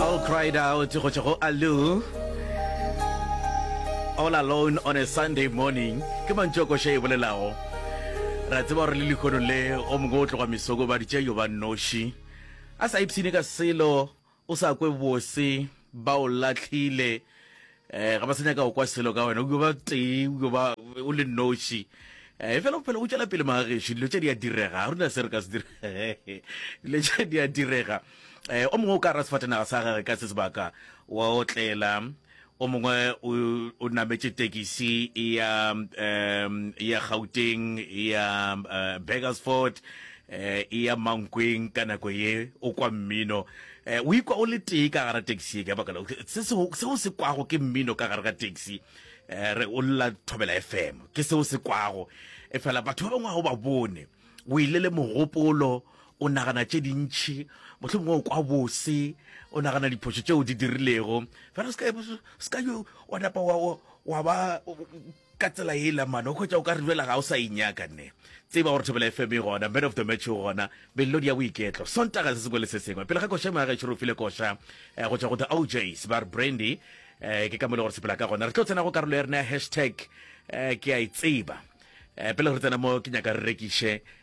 All cried out go tšwa go Allu. All alone on a Sunday morning ke mantšu a koša e bolelago ra tseba gore le lehono le go mongwe o tloga mesoko ba ditša yo ba noši a sa ipshine ka selo o sa kwe bose ba o latlhile um ga ba se nyaka go kwa selo ka wena o ba tee o ba o le noši e eh, fela bophelo bo tswela pele magageši dilo tse di a direga ga rona se re ka se dire dilo tse di a direga um o mongwe o ka ra sefatanaga sa gage ka se sebaka wa otlela o mongwe o nametše tekisi ya um ya gauteng ya uh, eh, bagersford um ya mankweng ka nako ye o kwa mmino O ikwa o le tee ka gara taxi e ka baka la se se se o se kwago ke mmino ka gare ga taxi re o lla thobela FM ke se o se kwago e fela batho ba bangwe ga o ba bone o ile le mogopolo o nagana tše dintšhi motlho mongwe o kwa bose o nagana diphošo tšeo di dirilego fela se ka se ka yo wa napa wa wa ba Ka tsela ye la mane o hwetša o ka re bjela ga o sa inyaka nne. Tseba gore Thobela FM e gona, Man of the Match o gona, melodi ya boiketlo, Sontaga se sengwe le se sengwe. Pele ga koša ya gešo re file koša eh, go tšwa go The OJs, ba re Brandy. Eh, ke ka mo le gore sepela ka gona. Re tlo tsena go karolo ya rena ya hashtag eh, ke a e tseba. Eh, pele re tsena mo ke nyaka re rekiše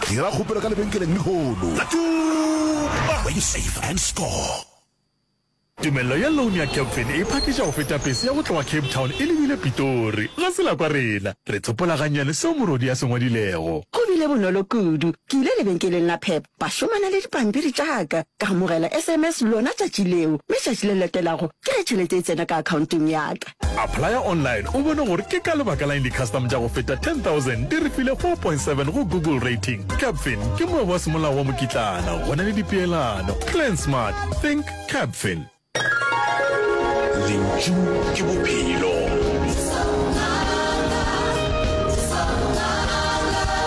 Dira kgopelo ka lebenkeleng lehono la Tuba where you save and score. Tumello ya loan ya Capfin e phakiša go feta pese ya go tloga Cape Town e lebile Pitori. Ga se la kwa rena. Re tsopola gannyane seo morwedi a se ngwadilego. Go bile bonolo kudu. Ke ile lebenkeleng la Pep, ba šomana le dipampiri tša ka. Ka amogela SMS lona tšatši leo, mme tšatši le latelago ke ge tšhelete e tsena ka akhaonteng ya ka. Applya online o bone gore ke ka lebaka la eng di-custom tša go feta 10,000 di re file 4.7 go Google Rating. Capfin ke moabi wa semolao wa mokitlana go na le dipeelano. Plan smart, think Capfin. Lentšu ke bophelo.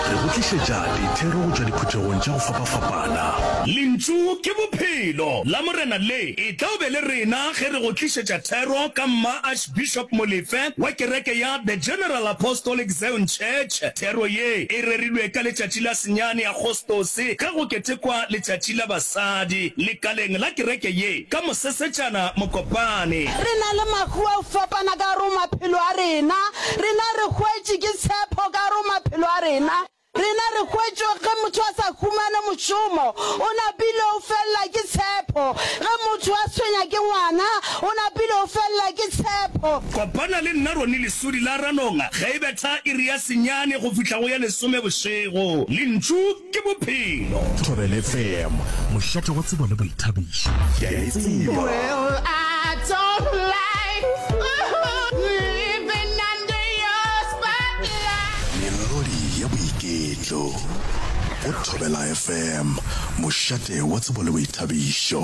Re go tlišetša dithero go tšwa diphuthegong tša go fapafapana. Lentšu ke bophelo la Morena le. E tla be le rena ge re go tlišetša thero ka Mma Archbishop Molefe wa kereke ya The General Apostolic Zion Church. Thero ye e rerilwe ka letšatši la senyane Agostose ge go ketekwa letšatši la basadi lekaleng la kereke ye ka Mosesetšana Mokopane. Re na le mahu a go fapana ka gare go maphelo a rena. Rena re hwetše ke tshepho ka gare go maphelo a rena. Rena re hwetše ge motho a sa humane mošomo, o napile o felela ke tshepho, ge motho a tshwenya ke ngwana, o napile o felela ke tshepho. Kopana le nna Ronnie Lesodi la Ranonga ge e betha iri ya senyane go fihla go ya lesome bošego. Lentšu ke Bophelo. Thobela FM, mošate wa tsebo le boithabišo. Keaitseba. melodi ya boiketlo go thobela fm mošate wa tsebo le boithabišo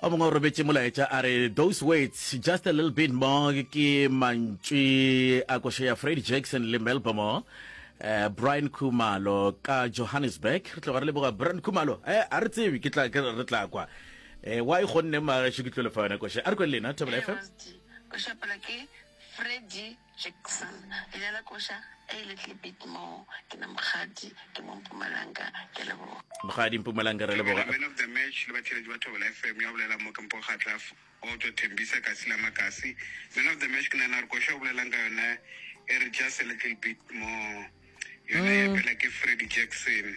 o mongwe o robetše molaetša a re those words just a little bit more ke mantšwi a koša ya fred jackson le melbomore eh, brian khumalo ka johannesburg re tloga re leboga brian khumalo eh, a re tsebe ke tla ke re tla kwa eh, wa e gonne magesho ke tlo lefa yona koša a re kwele lena thobela fm košapela ke freddy Jackson, Leina la koša A le tle bit more. Ke na Mokgadi, ke mo Mpumalanga. Ke a leboga. Mokgadi, Mpumalanga, re leboga. Man of the Match le batheeletši ba Thobela FM ya bolela mo ke Mpho Kgatla Auto Thembisa Kasi la Makasi. Man of the Match ke nagana gore koša o bolelang ka yona e re just a little bit more yona ya pela ke Freddie Jackson.